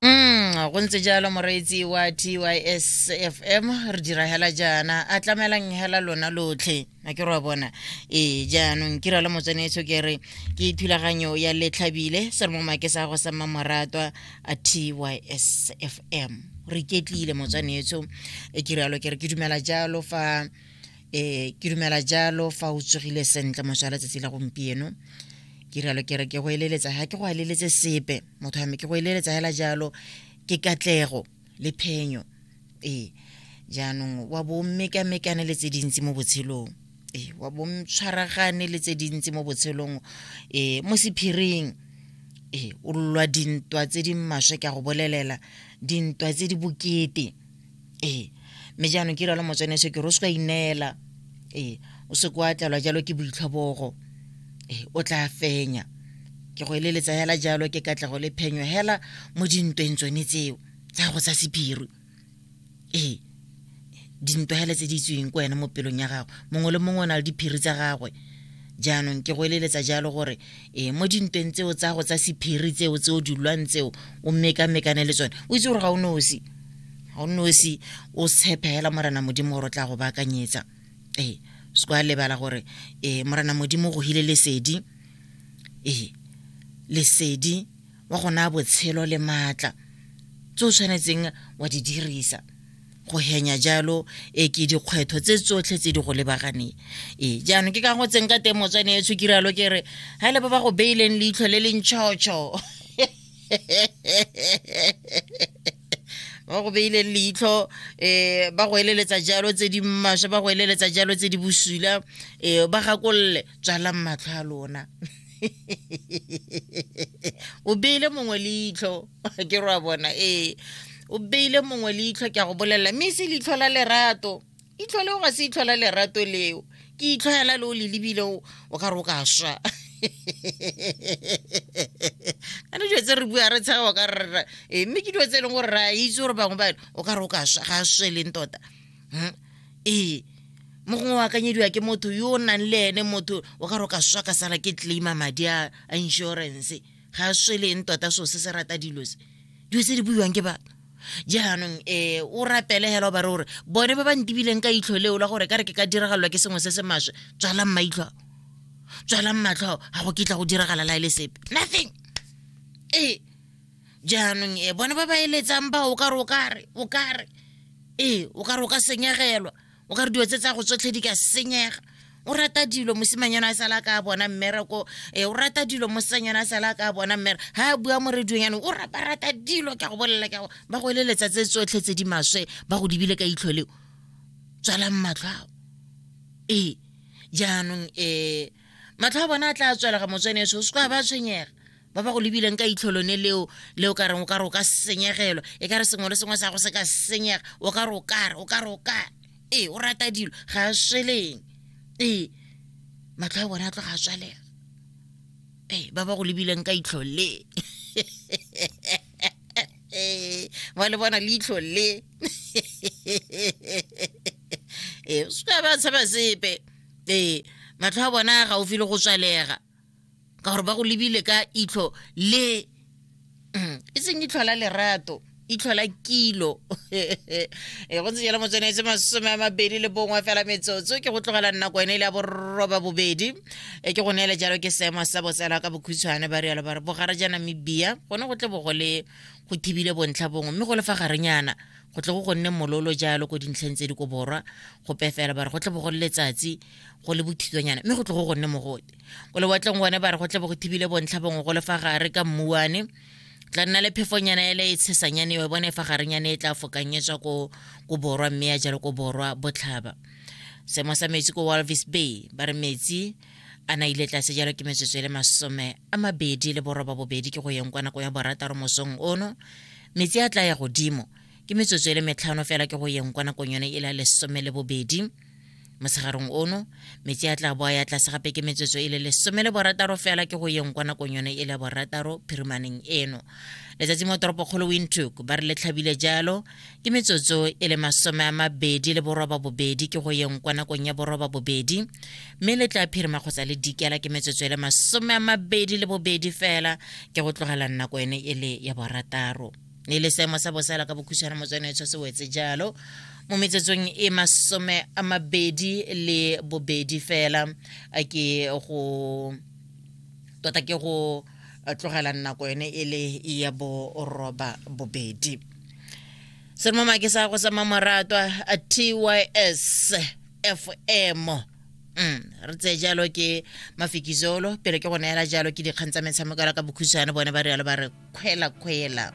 Mm, go ntse jalo moreetsi wa tys fm re dira hela jaana a tlamelang hela lona lotlhe a ke re bona ee jaanong kira le motsenetsho ke re ke thulaganyo ya letlhabile se re mo make sa go sa mmamoratwa a tys fm re iketlile motswanetsho e ke rialo ke re ke dumela jalo fa e ke dumela jalo fa o tsogile sentle moswa letsatsi la gompieno ke rialo ke re ke go eleletsa ga ke go eleletse sepe motho wa me ke go eleletsa fela jalo ke katlego le phenyo ee jaanong wa bo mmekamekane le tse dintsi mo botshelong ee wa bo tshwaragane le tse dintsi mo botshelong ee mo sephiring ee o lwa dintwa tse di maswe ka go bolelela dintwa tse di bokete ee mme jaanong ke ralo motsene se ke re o se ka ineela ee o se kwa tlalwa jalo ke boitlhobogo ee o tla fenya ke go eleletsa hela jalo ke katlego le phenyo hela mo dintweng tsone tseo tsa go tsa sephiri ee dintwa hela tse di tsweng ko wena mo pelong ya gagwe mongwe le mongwe o na le diphiri tsa gagwe jaanong ke go eleletsa jalo gore e mo dintweng tseo tsa go tsa sephiri tseo tse o dilwang tseo o mekamekane le tsone o itse gore ga o nosi ga o nosi o tshepe fela morena modimo gore o tla go baakanyetsa ee se kwa lebala gore ee morena modimo go hile lesedi ee lesedi wa gona botshelo le maatla tse o tshwanetseng wa di dirisa go henya jalo e ke dikgwetlho tse tsotlhe tse di go lebaganeng ee jaanong ke ka go tseng ka teng motswane e tshokiralo ke re ga le ba ba go beileng leitlho le le ntšhotšho ba go beile leitlho um ba go eleletsa jalo tse di maswe ba go eleletsa jalo tse di bosula um ba gakolole tswalang matlho a lona o beile mongwe leitlho ke rwa bona ee o beile mongwe leitlho ke a go bolelela mme se leitlho la lerato itlho leo ga se itlho la lerato leo ke itlho hela le o le lebile o ka re o ka swa ane dilo tse re bua re tshega o ka rera ee mme ke dilo tse e leng gore re a itse gore bangwe bane o ka re o ka swa ga a sweleng tota ee hmm? e. mo gongwe o akanyediwa ke motho yo o nang le ene motho o ka re o ka swa ka sala ke claima madi a insurance ga a sweleng tota so se se rata dilo se dilo tse di buiwang ke batho jaanong um o rapele hela o ba re gore bone ba ba ntibileng ka itlho leo la gore ka re ke ka diragalelwa ke sengwe se se maswe tswalang maitlho ao tswalang matlho ao ga go kitla go diragala la e le sepe nothing ee jaanong e bone ba ba eletsang ba o kare o kare o kare ee o kare o ka senyegelwa o kare dilo tse tsa go tsotlhe di ka senyega o rata dilo mosimanyana a sala ka bona mmereko e o rata dilo mosanyana a sala ka bona mmere ha a bua mo radiong yanong o rapa rata dilo ke go bolelela ke ba go eleletsa tse tsotlhe tse di maswe ba go dibile ka itlholeo tswalang matlho ao ee jaanong um matlho a bona a tla tswelega motsweneso o se kwa ba tshwenyega ba ba go lebileng ka itlho lone leo le o ka reng o ka re o ka senyegelwa e ka re sengwe le sengwe sa go se ka senyega o ka re o kare o ka re o kare ee o rata dilo ga a sweleng ee matlho a bone a tloga a tswalega ee ba ba go lebileng ka itlho le ba le bona leitlho le ee se ka ba tshaba sepe ee matlho a bona gaufi le go tswalega ka gore ba go lebile ka itlho le mm, e seng itlho la lerato itlho la kilo e go ntse jalo motswenetse masome a mabedi le bongwe fela metsotso ke go tlogela nna kwene le ya boroba bobedi e ke go neele jalo ke seemo sa botsela ka bokhutshwane ba rialo ba re bogare ja namibia gone go tle bo go le go thibile bontlha bongwe mme go le fa garenyana go tle go go nne mololo jalo ko dintlheng tse di ko borwa go pefela ba re go tle bo go le letsatsi go le bothitswanyana mme go tlo go gonne mogole ko lewatleng gone ba re go tle bo go thibile bontlha bongwe go le fa gare ka mmuane tla nna le phefonyana ele e tshesanyane e bone fa garenyane e tla fokanyetswa ko ko borwa mme ya jalo ko borwa botlhaba seemo sa metsi ko walvis bay ba re metsi a na ile tlase jalo ke metsotso e le masome a mabedi le boroba bobedi ke go yeng kwa nako ya borataro mosong ono metsi a tla ya godimo ke metsotso e le metlhano fela ke go yeng kwa nakong yone e la lesome le bobedi mosegarong ono metsi a tla boa ya tlase gape ke metsotso e le lesome le borataro fela ke go yeng kwa nakong yone e le borataro phirimaneng eno letsatsi mo toropokgolo windhoek ba re le tlhabile jalo ke metsotso e le masome a mabedi le boroba bobedi ke go yeng kwa nakong ya boroba bobedi mme le tla phirima kgotsa le dikela ke metsotso e le masome a mabedi le bobedi fela ke go tlogela nako ene e le ya borataro ne le seemo sa bosela ka bokhutshwana motswane tsho se wetse jalo mo metsetsong e masome a mabedi le bobedi fela a ke go tota ke go tlogela nako yone e le ya boroba bobedi se mo make sa go sa mamoratwa a tys fm Mm, re tseye jalo ke mafikizolo pele ke go neela jalo ke dikgang tsa metshameko ya ka bokhutshwane bone ba rialo ba re kgwela kgwela